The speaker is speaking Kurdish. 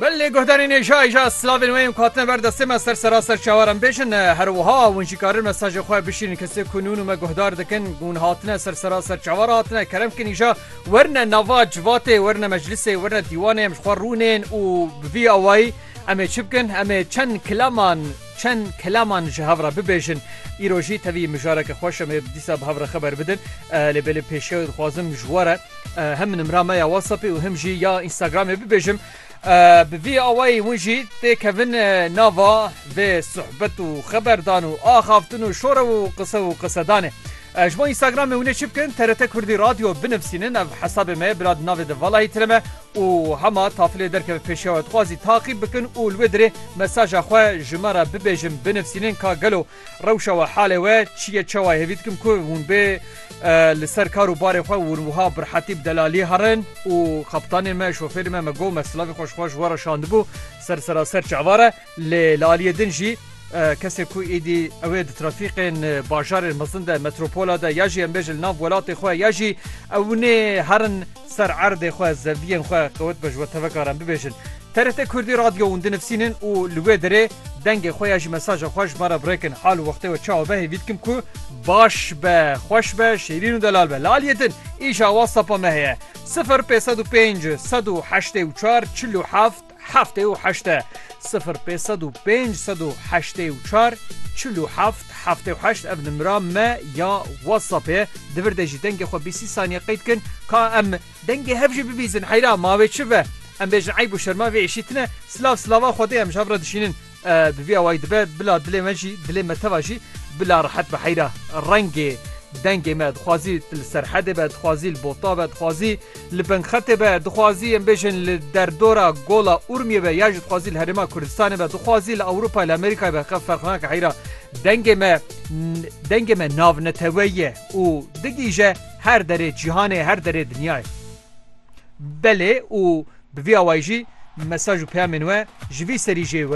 Belê guhdarên êja êja silavên wê yên ku hatine ber destê me ser seraser çawaran bêjin her wiha hûn jî karin mesajê xwe bişînin kesê ku nûn û me guhdar dikin hûn hatine ser seraser çawar hatine kerem kin îja werine nava civatê werine meclisê werine dîwanê em ji xwe rûnên û bi vî awayî em ê çi bikin em ê çend kilaman çend kilaman ji hev re bibêjin îro jî tevî mijareke xweş em ê dîsa bi hev re xeber bidin lê belê pêşiya dixwazim ji we re Him nimra me ya WhatsAppê û him jî ya Instagramê bibêjim. Bi vî awayî hûn jî tê kevin nava vê sohbet û xeberdan û axaftin û şorew û qise û qisedanê. Ji bo Instagramê hûnê çi bikin TRT Kurdî Radyo binivîsînin ev hesabê me bila di navê de valahî tire me û hema tafilê derkeve pêşiya we dixwazî taqîb bikin û li wê dirê mesaja xwe ji me re bibêjin binivîsînin ka gelo Rewşa we, halê we çi ye? Çawa hêvî dikim ku hûn bê li ser kar û barê xwe hûn wiha bi rehetî bi delalî herin û kaptanê me, şofêrê me me got me silavê xwe ji xwe ji we re şandibû ser seraser çavar e. Lê li aliyê din jî kesê ku êdî ew ê di trafîkên bajarên mezin de, metropola de ya jî em bêjin li nav welatê xwe ya jî ew nê herin ser erdê xwe, zeviyên xwe qewet be ji we tevek are em bibêjin. TRT Kurdî Radyo hûn dinivsînin û li wê derê dengê xwe ya ji mesaja xwe ji me re birekin hal û wextê we çawa be hêvî dikim ku baş be, xweş be, şêrîn û delal be. Li aliyê din îşa WhatsApp-a me heye sifir pênc sed û pênc sed û heştê û çar çil û heft heftê û heşt e. Sifir pênc sed û pênc sed û heştê û çar çil û heft heftê û heşt ev nimra me ya WhatsApp-ê. Di vir de jî dengê xwe bîst sî saniye qeyd kin ka em Dengê hev jî bibîzin heyra ma wê çi ve. Em bêjin eyb û şerma vê êşî tine, silav silava Xwedê em ji hev re dişînin. Bi vî awayî dibe bila dilê me jî, dilê me teva jî bila rehet be heyra. Rengê dengê me dixwazî li serhedê be, dixwazî li bota be, dixwazî li bingxetê be, dixwazî em bêjin li derdora Gola Urmiyê be ya jî dixwazî li Herêma Kurdistanê be, dixwazî li Ewropayê li Amerîkayê be xev ferq nake heyra. Dengê me dengê me navneteweyî ye û digihîje. her derê cîhanê, her derê dinyayê. Belê û bi vî awayî jî mesaj û peyamên we ji vî serî jê werin.